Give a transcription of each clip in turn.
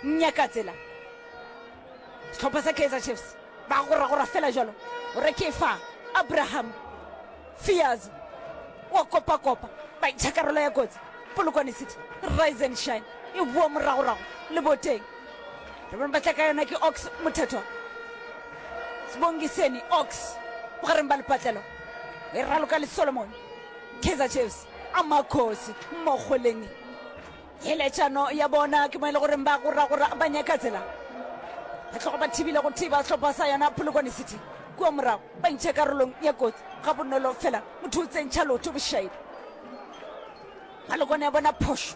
nyaka tsela sehlopha sa kaizer chiefs ba goragora fela jalo gore ke fa abraham fears wa kopakopa ba itšha karolo ya kotsi polokwane city rise and shine e boa moragorago le boteng re bone ba tla ka yona ke ox mothethwa sebongiseni ox bogareng ba lepatlelo e raloka le solomon kaizer chiefs a makgosi mmokgoleng Theeletšano ya bona ke mo e le goreng ba goragora ba nyaka tsela. Ba tloga ba thibile go thiba sehlopha sa yona Polokwane City. Kua morago ba ntšhe karolong ya kotsi ga bonolo fela motho o tsentšha lotho bošaedi. Polokwane ya bona phošo.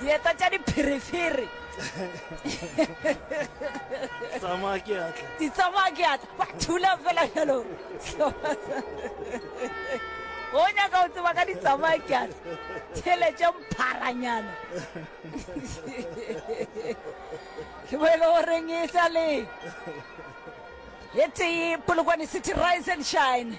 dieta tša dipherefere tsamaya ke atla di tsamaya ke atla ba thula fela jalo go nyaka go tseba ka di tsamaya ke atla theletše mpharanyana ke bo e le goreng e sa le e tee polokwane city rise and shine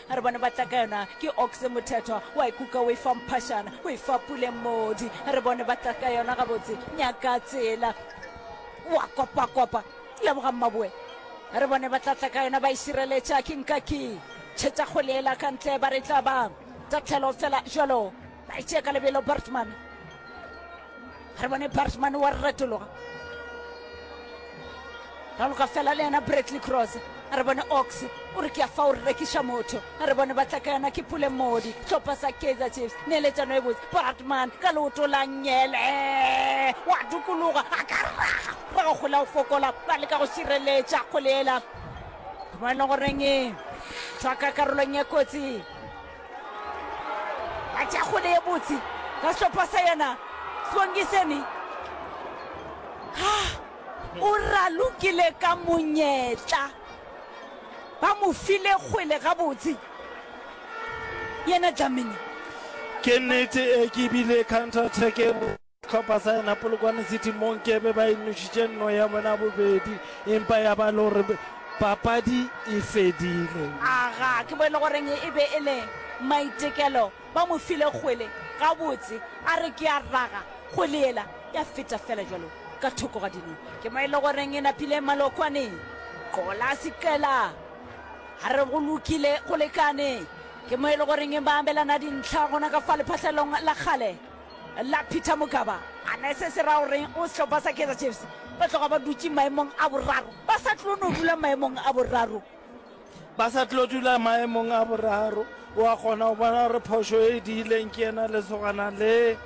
a re bone ba tla ka yona ke oxe mothethwa wa e kuka o e fa mphashana o e fa puleng modi a re bone ba tla ka yona gabotse nyaka tsela wa kopakopa leboga mmaboe a re bone ba tla tla ka yona ba e šireletša ke nka ke tšhetša kgolela ka ntle ba re tla ba tatlhelo fela jalo ba e tšee ka lebelo bartman ga re bone bartman wa re retologa raloka fela le yena bradley cross a re bone ox o re ke a fa o re rekiša motho a re bone batla ka yona ke pule modi tlhopha sa kaizer chiefs neeletšano e botse bartman ka leoto la nyele wa dukologa a ka raga ba go gola o fokola ba leka go šireletša kgole ela mo e leng goreng e thwaka karolong ya kotsi a tša kgole ye botse ka sehlopha sa yena swangiseni o ralokile ka monyetla ba mo file kgwele gabotse yena dlamini ke nnete e ke bile counter attack Sehlopha sa yena Polokwane City mo nkebe ba inošitše nno ya bona bobedi empa ya ba le gore papadi e fedile. Aga, ke bone goreng e be e le maitekelo ba mo file kgwele gabotse, a re ke a raga kgwele yela ya feta fela jalo ka thoko ga dino. Ke mo e le goreng e napile Malokwane, qola seqela a re go lokile go lekane. Ke mo e le goreng e ba abelana dintlha gona ka fa lephahlelong la kgale. la Peter Mokaba. A na se se ra gore o sehlopha sa Kaizer Chiefs ba tloga ba dutše maemong a boraro? Ba sa tlo no dula maemong a boraro. Ba sa tlo dula maemong a boraro. O a kgona go bona gore phošo e diileng ke yena lesogana le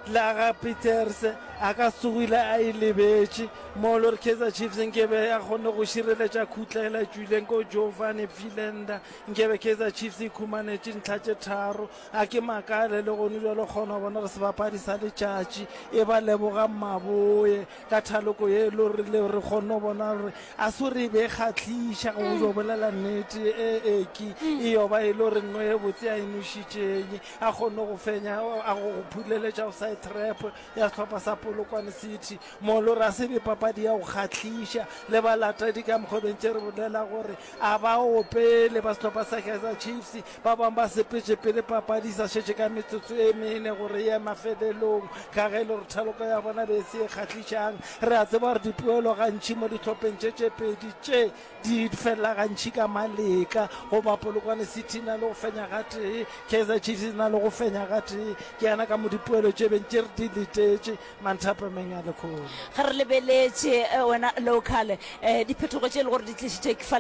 la ga Peters a ka sogile a e lebetše mo le gore Kaizer Chiefs nkebe a kgone go šireletša khutlela tswileng ko Giovanni Pfilenda nkebe Kaizer Chiefs e khumanetše ntlha tše tharo a ke makaele le gone bjalo kgona bona re sebapadi sa letšatši e ba leboga mmaboye ka thaloko ye lo rile re kgone bona gore a se re be kgatlhiša go jo bolela nnete e eki e yoba e le gore nno e botse a enošitšeng a kgone go fenya a go phuleletša go side trap ya sehlopha sa polokwane city mo lo re a se be papadi ya go kgatlhiša le balatedi ka mokgobentše re bolela gore a ba opele ba sehlopha sa kaizer chiefs Ba bangwe ba sepetše pele papadi e sa šetše ka metsotso e mene gore e ye mafelelong ka ge e le gore thaloko ya bona be e se e kgahlišang. Re a tseba gore dipoelo gantši mo dihlopheng tše tše pedi tše di felela gantši ka maletla goba Polokwane City na le go fenya ga tee, Kaizer Chiefs na le go fenya ga tee. Ke yana ka mo dipoelo tše beng tše re di letetše manthapameng a lekgolo. Ge re lebeletše eh, wena local eh, diphetogo tše e le gore di tlišitšwe ke fa